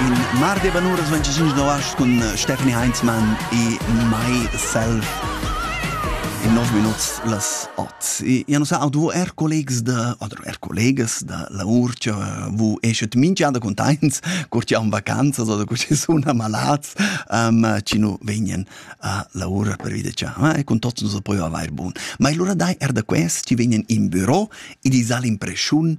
in mar de banur es 25 novas cun Stephanie Heinzmann e myself in 9 minuts las 8. Ja nu sa, auch du er collegs da, oder er collegas da la urcia, wo eschet minchada contains, curt ja um vacanzas oder cur sun amalats, um, ci nu vegnen a la ura per vita cha, e con tots nos poi avair bun. Ma allora dai er da quest, ci vegnen in büro e di sal impresciun,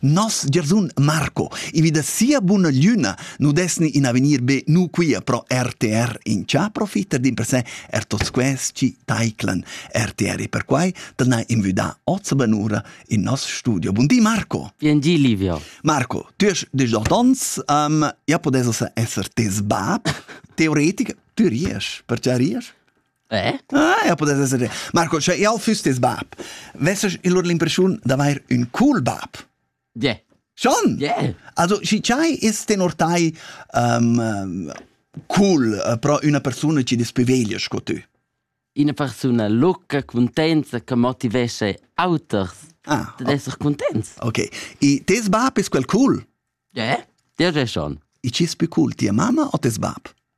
Nos giarsun Marco, i vi da sia buna gliuna, nu desni in avegnir be nu quia pro RTR in cha profita d'in per se er tots quest chi taiclan RTR e per quai dal na invüdà oz benura in nos studio. Bun di Marco! Bien di Livio! Marco, tu hast 18 ans, um, ja podes esser tes bab, teoretic, tu ries, perche ries? Eh? Ah, ja pudess esser. Marco, sche jau füss tes bab, vesses il lur l'impressiun d'avair un cool bab. Yeah. Schon? Yeah. Also, si c'hai ist den ortai um, cool uh, pro una persona che dispoveglia sco tu? Una persona lucca, contenza, che motivesce auters ah, ad essere contents. Ok. E tes bab è quel cool? Yeah, dir è schon. E ci è più cool, tia mamma o tes bab?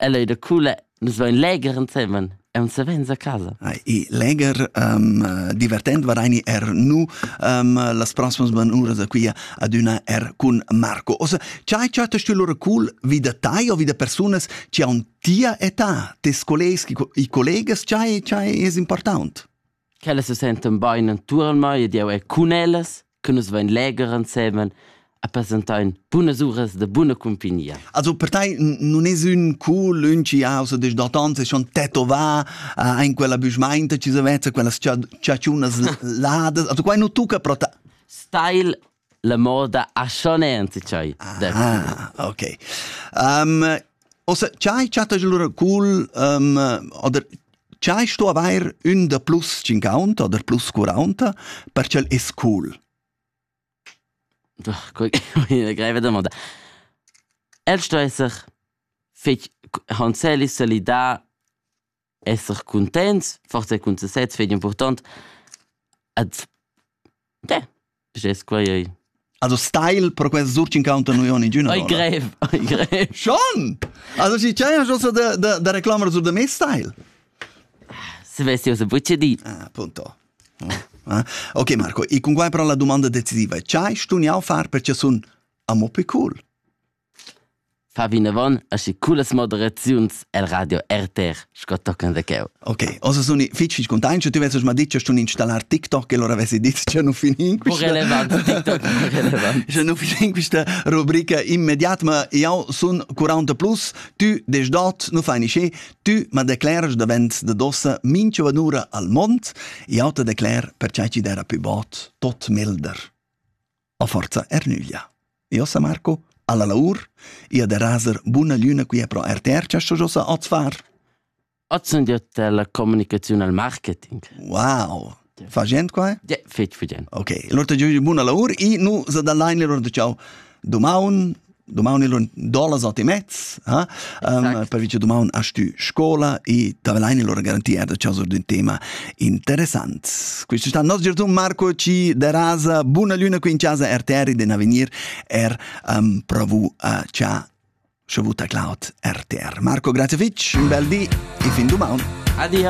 Ella ei da cula, nus vein legher ensemen e un savens a casa. E legher um, divertent varaini er nu um, las proximas banuras a quia adüna er cun Marco. Osa, chai chatta stü lura cool vi da tai o vi da persunas chi haun tia età, tes collegs, i collegas, chai, chai es important? Ch'ellas se sentan bain intuorn mei ed eu è cun ellas, che nus vain leger insemen e presentain bunas uras da buna cumpagnia. Also per te non es ün cool ün chi ha so des datans e schon tetovà uh, in quella büschmainta ci se vezza quella ciaciunas ladas. Also quai nu tucca pro te. Style La moda aschoneante tschai. Ah, okay. Um, ossa chai chattasch lura cool um, oder chai sto avair ün da plus 50 oder plus 40 perché el es cool. Doch, guck, eine greve Domanda. El sto esser fich hanzeli solidar esser cuntents, forsa cun sesez vegn impurtant. Ed de, gest quei ei. Also style per quel surch incounter nu on ingüna. Ei grev, ei grev. Schon! Also ci c'è giusto da da da reclamar su da me style. Se vesti o se bucce di. Ah, appunto. Ah. Ok Marco, e con quai però la domanda decisiva, c'hai stugnau far perché sun amo più cool? Fa vinavon aschi cullas moderaziuns el radio RTR sco tochen da cheu. Ok, ossa sun i fitg content, che tu vesses ma ditg stun installar TikTok e allora vessi dit che non fin in questa correlevant TikTok correlevant. Che non fin in questa rubrica immediat, ma io sun 40 plus, tu des dot, non fai nisce, tu ma decleras davent de dossa minchia vanura al mond, io te decler per ciai ci dera più bot tot milder. A forza er nüglia. E ossa Marco, alla laur, ia de raser buna lüna quia pro RTR cha josa oz far? Ozzendete la communicazione al marketing. Wow! Fagend qua? Ja, fetg fagend. Ok, allora te giu buna laur e nu sa da line le lor ciao. Domaun Domaun il dolas ot e mezz, eh? um, per vice domaun a stü scola e davelain il loro garantia da chaso d'un tema interessant. Questo sta nos giorno Marco ci derasa buona luna qui in casa RTR den avenir er um, provu a cha sciavuta Cloud RTR. Marco, grazie fitch, un bel di e fin domaun. Adia.